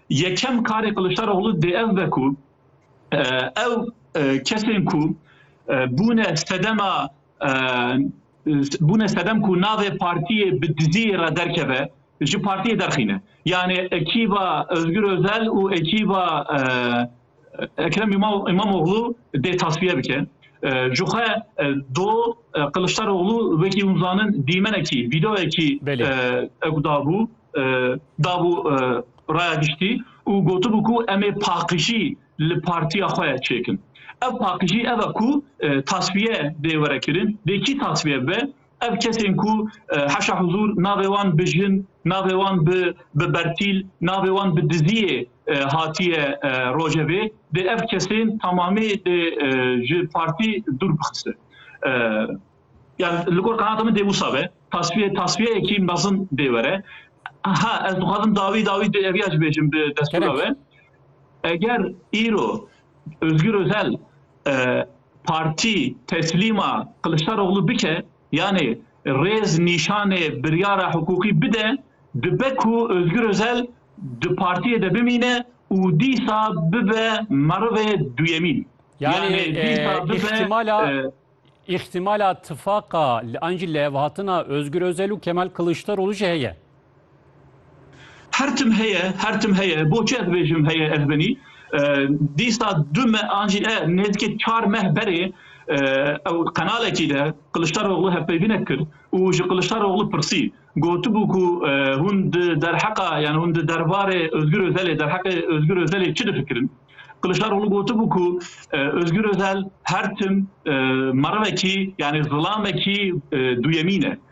Yekem karê Kiliçdaroglu dê ev be ku ew kesên ku bûne sedema bûne sedem ku navê partiyê bi dizî re derkeve ji partiyê derxîne. Yanê ekîba Ozgur Ozel û ekîba Ekrem İmamoğlu dê tasfiye bike. Ji xwe do Qiliçdaroğlu wekî hûn zanin dîmenekî, vîdeoyekî ew dabû dabû raya giştî û gotibû ku em ê paqijî li partiya xwe çêkin. Ev paqijî ev e ku tasfiye dê were kirin, dê kî tasfiye bibe, Ev kesên ku heşa huzûr navê wan bi jin, navê wan bi bi bertîl, navê wan bi diziyê hatiye rojevê dê ev kesên tamamê dê ji partî dûr bixise. Yani li gor qenata min dê wisa be. Tasfiye tasfiyeyekî mezin dê were. Ha ez dixwazim dawî dawî dê eviya ji bêjim bi destûra we. Eger îro Ozgir Ozel Partî teslîma Kiliçdaroglu bike yanê rêz nîşanê biryara hiqûqî bide dibe ku Ozgur Ozel di partiyê de bimîne û dîsa bibe merivê duyemîn. Yanê dîsa bibe. Îxtîmala tifaqa an jî lihevhatina Ozgur Ozel û Kemal Kiliçdaroglu jî heye. Her tim heye, her tim heye. Bo çi ez bêjim heye ez binî? Dîsa du meh an jî ne, nêzîkî çar meh berê ew qenalekî de Qiliçdaroglu hevpeyvînek kir û ji Qiliçdaroglu pirsî. Gotibû ku hûn di derheqa yanî hûn di derbarê Ozgûr Ozelê, derheqê Ozgûr Ozelê çi difikirin? Qiliçdaroglu gotibû ku Ozgûr Ozel her tim merivekî yanî zilamekî duyemîn e.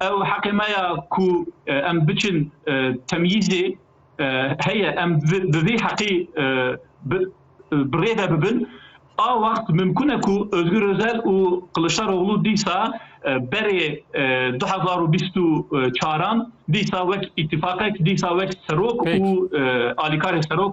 Ew heqê me ya ku em biçin temyîzê heye, em bi vê heqê bi rê ve bibin. A wext mimkun e ku Ozgur Ozel û Kiliçdaroglu dîsa berê du hezar û bîst û çaran dîsa wek îtîfaqek, dîsa wek serok û alîkarê serok,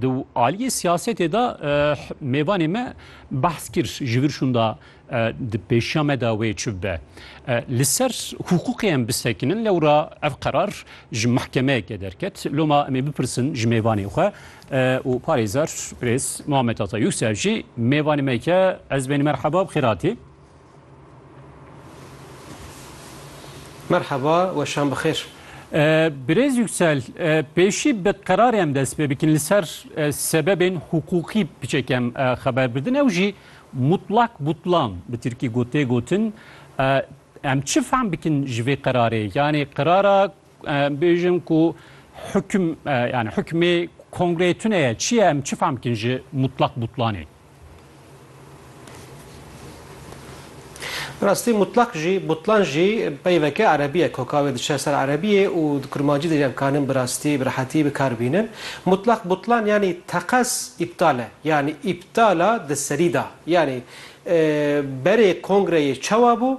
Di aliyê siyasetê de mêvanê me behs kir ji vir şûnda di pêşiya me de wê çi bibe. Li ser hûqûqê em bisekinin lewra ev qerar ji mehkemeyeke derket. Loma em ê bipirsin ji mêvanê xwe û parêzer Birêz Muhammed Ata Yûsef jî mêvanê me ke ez bên merheba bi xêratî. Merhaba, weşan bi xêr. Birêz Yüksel, pêşî bi qerarê em dest pê bikin li ser sebebên hiqûqî piçek em xeber bidin ew jî mutlak butlan bi tirkî got tê gotin. Em çi fehm bikin ji vê qerarê? Yanê qerara Em bêjin ku hukm yani hukmê kongreyê tune ye çi ye em çi fam bikin ji mutlak butlanê? Rastî mutlak jî butlan jî peyveke erebî ye koka wê diçe ser erebîyê û di kurmancî de jî em kanin bi rastî bi rehetî bi kar bînin. Mutlak butlan yanî teqez îptal e yanî îptala di serî da yanî berê kongreyê çawa bû,